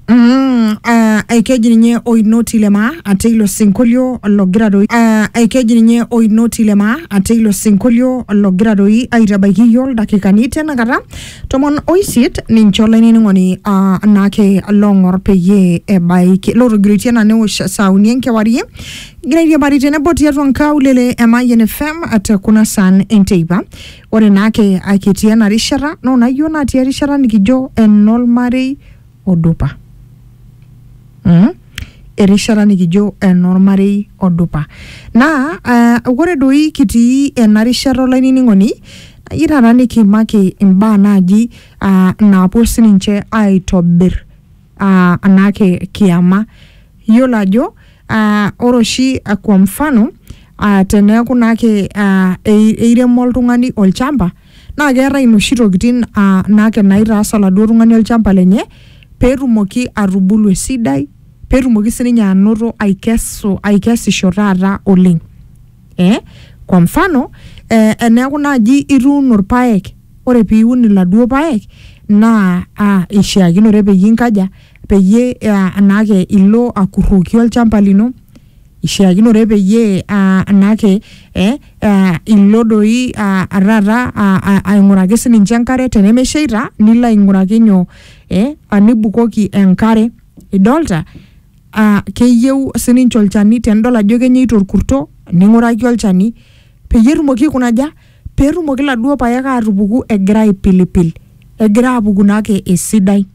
Mm, ah, ekeji ninye oinoti lemaa ate ilo sinkolio logira doi ah, ekeji ninye oinoti lemaa ate ilo sinkolio logira doi aitabaiki iyio ildakikani tenakata tomon oisiet ninche olainining'oni ah, naake long'or peyie ebaiki lotogiroitie ena newosh saa uni enkewarie egira airiamari tenebo tiatua nkaulele e Mayian FM te kuna saan enteipa Ore naake a kitii ena rishata naa ona iyiok natii erishata nikijo enormarei odupa. Mmh, erishata nikijo enormarei odupa. Naa aa ore doi kitii ena rishata olainining'oni nayeu taata nikiimaki imbaa naaji aa naapuo sininje aitobir. uh, anake kiama yiolo ajo uh, ore oshi uh, kwa mfano uh, teneeku naake uh, eiremo oltung'ani olchamba naa keetae inoshi tokitin uh, naake naitaas oladuo tung'ani olchamba lenye peetumoki atubulu esidai peetumoki sininye anoto aikesu aikesisho taata oleng. eh? kwa mfano eh, eneeku naaji ituuno irpaek ore piun iladuo paek naa ah, ishiakinore peyie inkaja peyie ah, anaake ilo akurroki olchamba lino ishiakinore peyie ah, anaake eh, ah, ilo doi ah, taata ah, ah, aing'uraki sininche enkare tenemesheita nilo aing'uraki nyoo eh, anibukoki enkare idolta aa keyieu sininche olchani tenidol ajo kenyaito orkurto ning'uraki olchani peyie etumoki aikunaja peetumoki iladuo paek aatupuku egira aipilipil egira aapuku naake esidai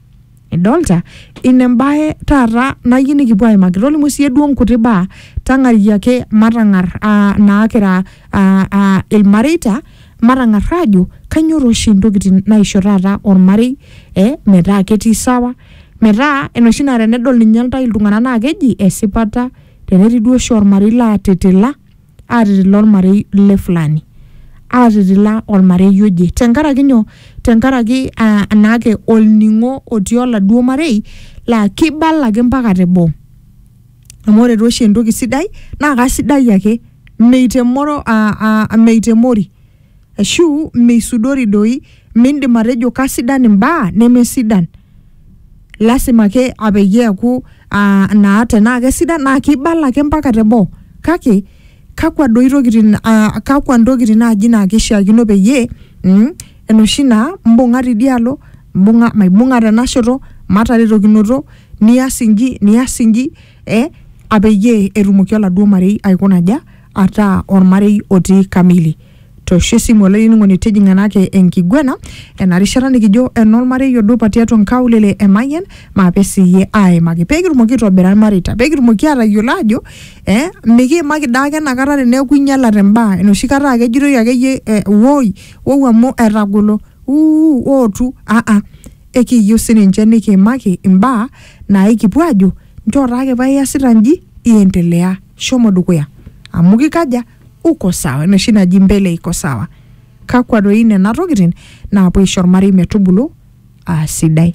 idolta ina embaye taata nayieu nikipuo aimaki tolimu siiyie duo inkuti baa tang'ari ake matang'arr aa naa kira aa aa ilmareita. Matang'ar aajo kainyoo taa oshi intokitin naisho taata olmarei eh metaa ketii sawa metaa enoshi naa tenedol ninye intae iltung'anak naa keji esipata tenetii duo oshi olmarei laatitila, aatitila olmarei le fulani. Aatitila olmarei oje tenkaraki nyoo, tenkaraki aah naake olning'o otii oladuo marei laa keibala ake mpaka teboo. amu ore tooshi entoki sidai naa kasidai ake meitemoro aa aa meitemori ashu meisudori doi mindim atejo kasidan imbaa nemesidan lasima ake apeyie eeku aa naa tenaa kesidan naa kibala ake mpaka teboo kake kakwa doi tokitin aa kakwa ntokitin naaji naa kishiakino peyie mmh enoshi naa imbung'a tidialo. mbung'a maibung'a tena shoto mataretokinoto nias inji nias inji eh, apeyie etumoki oladuo marei aikuna aja ataa ormarei otii kamili toosho esimu olainining'oni tijing'a enake enkiguena ena rishata nikijo enormarei odupa tiatua nkaulele e Mayian maape siiyie aaimaki peekitumoki aitobira irmareita peekitumoki aatayiolo aajo eh, mikiimaki daake enakata teneeku inyialate imbaa enoshi kata aa kejitoi akeyie eh, woi wou amu etagolo uu ootu aa ekiiyieu sininche nikiimaki imbaa naaikipuo aajo nchoo taake paa iasita nji iendelea shomo dukuya amu kikaja uko sawa enoshi naji mbele iko sawa kakwa doi nena tokitin naapuo aisho ormarei metubulu aa sidai.